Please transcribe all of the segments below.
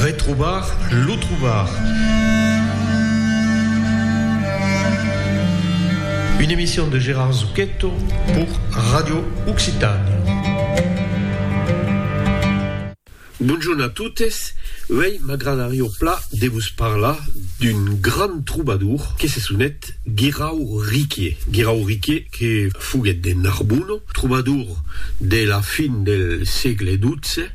Retrobar lo trobar. Une emission de Gérard Zucchetto pour Radio Occitània. Bonjorn a totes, uèi m'agradarió pla de vos parlar d'un grand trobador que se sonet Guirau Riquier. Guirau Riquier. que foguèt de Narbonne, trobador de la fin del sègle xii,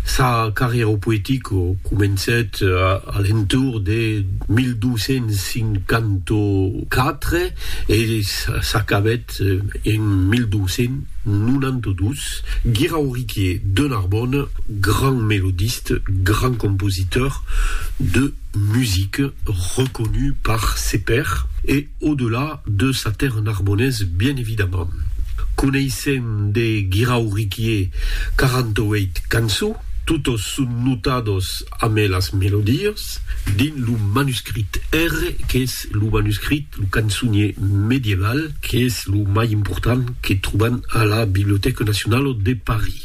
sa carrièra poetica comencèt a l'entorn de 1254 e s'acabèt en 1292, Guirauriquier de Narbonne, grand melodiste, grand compositeur de musique, reconut par ses pairs e. Au-delà de sa terre narbonnaise bien évidemment. Coneissèm de Guirau Riquier 48 cançons, totes son notades ame las melodies, dins lo manuscrit R, qu'es lo manuscrit, lo cançonier medieval, qu'es lo mai important que trobam a la Bibliothèque Nationale de Paris.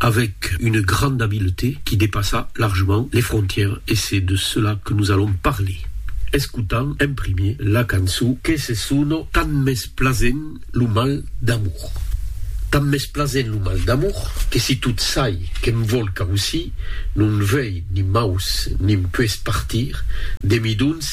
avec une grande habileté qui dépassa largement les frontières et c'est de cela que nous allons parler escotant en premier la cançon que se sona Tant m'es plasent lo mal d'amour. Tant m'es plasent lo mal d'amour que si tot çai que'm vòl causir non vei ni maus ni 'm pueis partir de mi dons